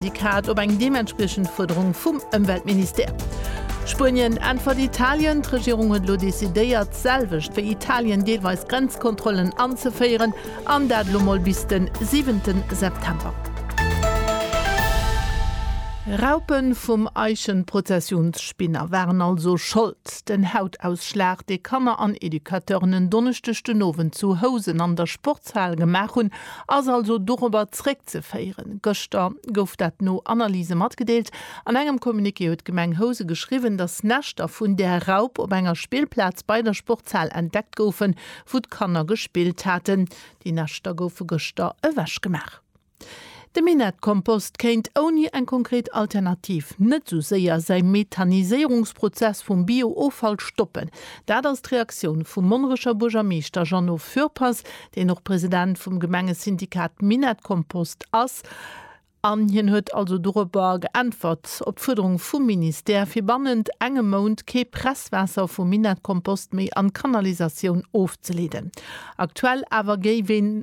Syndikat op eng deementspriechend Fuerderung vum Ëmweltministère. Spuenien äntwert Italien, D'Regierung huet elo decidéiert, d'selwecht wéi Italien, deelweis Grenzkontrollen anzeféieren, an dat elo mol bis de siwente September. Raupe vum Eichenprozessionsspinner waren also Schold. Den Hautausschlag, dee Kanner an Educateuren en Donneschdeg den Owend zu Housen an der Sportshal Opzahl gemaach hunn, ass also dorobber zréckzeféieren. Gëschter gouf dat no Analyse matgedeelt. An engem Communiqué huet d'Gemeng Housen geschriwwen, dass Näschter vun där Raup op enger Spillplaz bei der Sportshal entdeckt goufen, wou d'Kanner gespillt haten. Déi Näschter goufe gëschter ewechgemaach. De Minettkompost kéint ouni eng konkret Alternativ net esou séier säi Methaniséierungsprozess vum Bio-Offall stoppen. Dat ass d'Reaktioun vum Monnerecher Buergermeeschter Jeannot Fürpass, deen och President vum Gemengesyndikat Minettkompost ass. An hien huet also dorobber geäntwert, op d'Fuerderung vum Ministère, fir bannent engem Mount kee Presswaasser vum Minettkompost méi an d'Kanalisatioun ofzeleeden. Aktuell awer géif een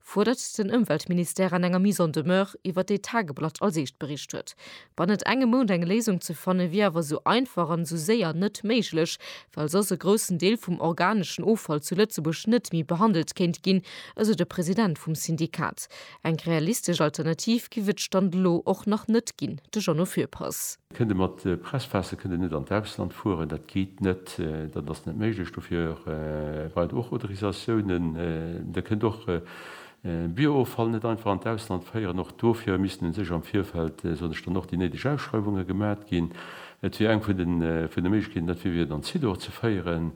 fuerdert den Ëmweltministère an enger Mise en demeure, iwwer déi d'Tageblatt als eescht bericht huet. Bannent engem Mount eng Léisung ze fanne wier awer esou einfach an esou séier net méiglech, well soss e groussen Deel vum organeschen Offall zu Lëtzebuerg net méi behandelt kéint ginn, esou de President vum Syndikat. Eng realistesch Alternativ giff et Stand elo och nach net ginn, de Jeannot Fürpass. Kënnt e mat Presspässe kënnt e net an d'Ausland fueren, dat geet net, dat ass net méiglech. Dofir brauch et och Autorisatiounen. Der kënnt och Bio-Offall net einfach an d'Ausland féieren. Och dofir missten u sech am Virfeld, soen ech dann, och déi néideg Ausschreiwunge gemat ginn. Et wier eng vun de Méiglechkeeten, dat wier, fir et an Zidor ze féieren.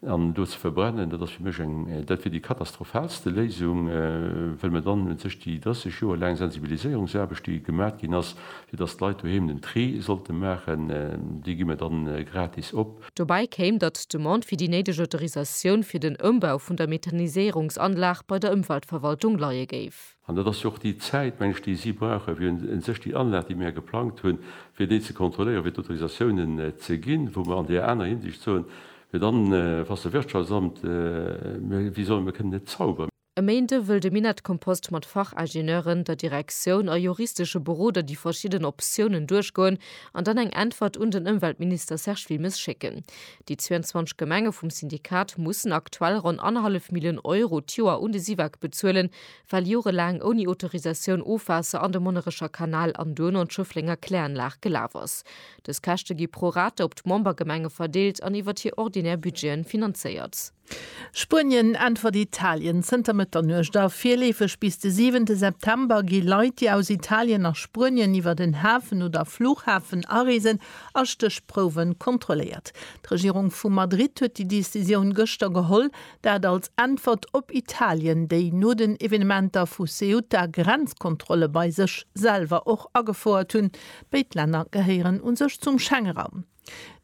An do ze verbrennen, dat ass fir mech eng, dat wier déi katastrophalste Léisung, well mer dann un sech déi 30 Joer laang Sensibiliséierungsaarbecht, déi gemat ginn ass, fir datt d'Leit doheem den Tri sollte maachen, déi gi mer dann gratis op. Dobäi kéim, datt d'Demande fir déi néideg Autorisatioun fir den Ëmbau vun der Methaniséierungsanlag bei der Ëmweltverwaltung leie géif. An dat ass jo och déi Zäit, meng ech, déi si brauchen, fir un sech déi Anlag, déi mir geplangt hunn, fir déi ze kontrolléieren, fir d'Autorisatiounen ze ginn, wou mer an där aner Hinsicht soen, fir dann, Wasserwirtschaftsamt, mir, wéi soll, mir kënnen net zauberen. E Méinde wëll de Minett-Kompost mat Fachingenieuren, der Direktioun a juristesche Beroder déi verschidden Optiounen duerchgoen an dann eng Äntwert un den Ëmweltminister Serge Wilmes schécken. Déi 22 Gemenge vum Syndikat mussen aktuell ronn annerhallef Million Euro d'Joer un de SIVAK bezuelen, well jorelaang ouni Autorisatioun Ofwaasser an de Monnerecher Kanal an duerno an d'Schëfflenger Kläranlag gelaf ass. Dës Käschte gi pro rata op d'Membergemenge verdeelt an iwwert hir ordinär Budgeten finanzéiert. Spuenien äntwert Italien zënter Mëtternuecht a virleefeg bis de siwente September gi Leit, déi aus Italien nach Spuenien iwwert en Hafen oder Fluchhafen areesen, a Stéchprouwe kontrolléiert. D'Regierung vu Madrid huet déi Decisioun gëschter geholl. Dat als Äntwert op Italien, déi no den Evenementer vu Ceuta Grenzkontrolle bei sech selwer och agefouert hunn. Béid Länner gehéieren u sech zum Schengeraum.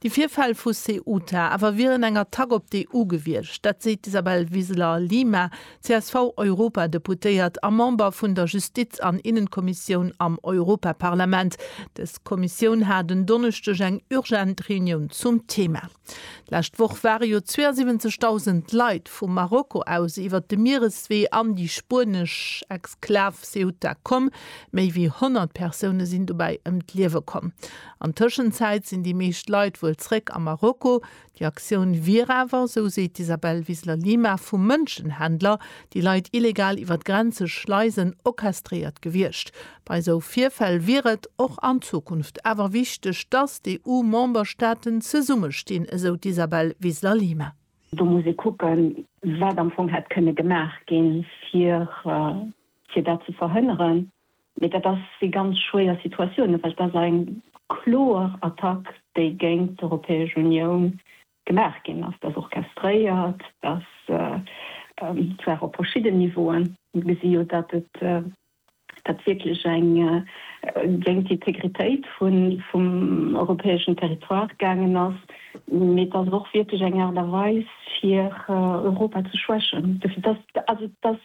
Déi Virfäll vu Ceuta awer wieren eng Attack op d'EU gewiescht. Dat seet d'Isabel Wiseler Lima, CSV-Europadeputéiert a Member vun der Justiz an Innenkommissioun am Europaparlament. Dës Kommissioun hat en Donneschdeg eng urgent Reunioun zum Thema. D'lescht Woch ware jo 72.000 Leit vu Marokko aus iwwert de Miereswee an déi spuenesch Exklav Ceuta komm. Méi wéi 100 Persoune sinn dobäi ëm d'Liewe komm. An Tëschenzäit sinn déi meescht Leit wuel zréck a Marokko. Déi Aktioun wier awer, esou seet d'Isabel Wiseler-Lima, vu Mënschenhändler, déi Leit illegal iwwer d'Grenze schleisen, orchestréiert gewiescht. Bei esou Virfäll wier et och an Zukunft awer wichteg, datt d'EU-Memberstaaten zesummestinn, esou d'Isabel Wiesler-Lima. Do muss ee kucken, wat am Fong hätt kënne gemaach ginn, fir dat ze verhënneren. Mee dat si ganz schwéier Situatiounen, well et ass eng kloer Attack, déi géint d'Europäesch Unioun gemaach ginn ass. Dat ass orchestréiert, dat ass zwar op verschidden Niveauen. Mir gesi jo, datt et dat wierklech eng géint d'Integritéit vum europäeschen Territoire gaangen ass, mee et ass och wierklech eng Aart a Weis, fir Europa ze schwächen. Dofir, dass, also dass